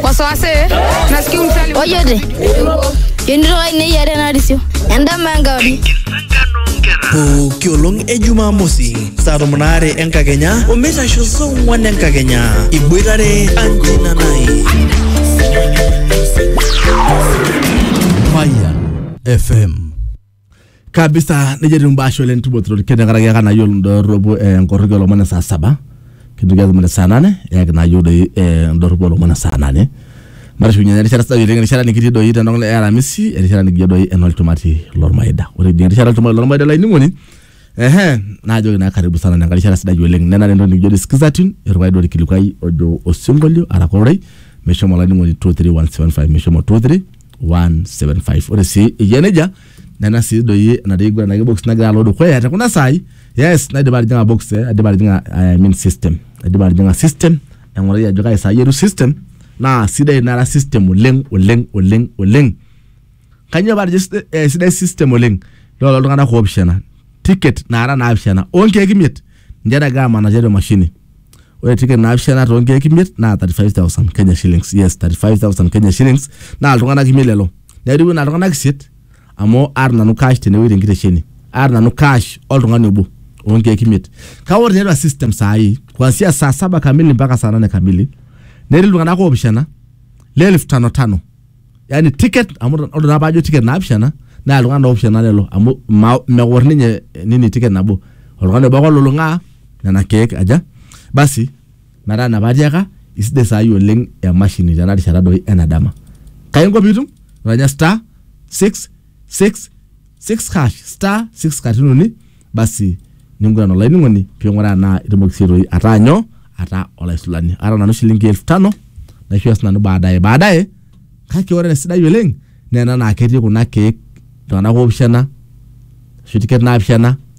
wasiwasi nasikia umsali ojote yonito ai neyiare narisio endama enkauri pooki olong e jumamosi saa tomon aare enkakenya omitaisho saa ong'wan enkakenya iboitare anjina nai Fire FM. kabisa nejia etiu imbaa ashe oleng tubotorori tenkaraki aka nayiolo indorropu eh, nkorroki olomon e saa saba kintoki atum ene saa nane eyaki nayieu doi eh, indorropu olomon e saa nane matushukunye naa erishata sidai oleng erishata nikitii doi tenok e aramisi erishata nikijo doi enolchumati lormaida ore ijing erishata olchumati lormaida olainining'oni ehe naajoki naa karibu sana nenkae rishata sidai oleng nenare entoki nikijo doi skiza tune erukai doi orkilikuai ojo osinkolio araka ororei meshomo olainining'oni 23175 meshomo 23 175 ore sii eyia nejia nena sii doi enatii iguran ake box nagira alo dukuya te kuna saai yes naidipa atijing'a box eh, aidipa atijing'a I mean system aidipa atijing'a system aing'urai ajo kai saai etu system naa sidai nara system oleng oleng oleng oleng kanyoo paatejo side- eh, sidai system oleng loola iltung'anak oopishana ticket naara naapishana onkeek imiet ninche nagira amanaa tiatua emashini ore ticket naapishana too nkeek imiet naa 35000 Kenya shillings yes 35000 Kenya shillings naa iltung'anak imiet lelo neiriu ina iltung'anak isiet amu aata nanu cash tenewueji tenkitesheni aata nanu cash oltung'ani obo oo nkeek imiet kake ore tiatua system saai kuanzia saa saba kamili mpaka saa nane kamili netii iltung'anak oopishana le elfu tano tano yani ticket amu ore naa paajo ticket naapishana naa iltung'anak oopishana lelo amu ma- meor ninye eh, nini ticket nabo oltung'ani obo ake olulung'aa nena keek aja basi metaa ina paatiaka isidai saai oleng emashini tena rishata doi ena dama kainko piitum iranya star 6 6 6 hash star 6 katitin uni basi ninguran olainining'oni ping'uraa naa itumoki sii toi ataa nyoo ataa olaisulani aata nanu shilingi elfu tano naishooyo sinanu baadaye baadaye kake ore esidai oleng naa ena naa ketii kuna keek iltung'anak opishana ashu tiket naapishana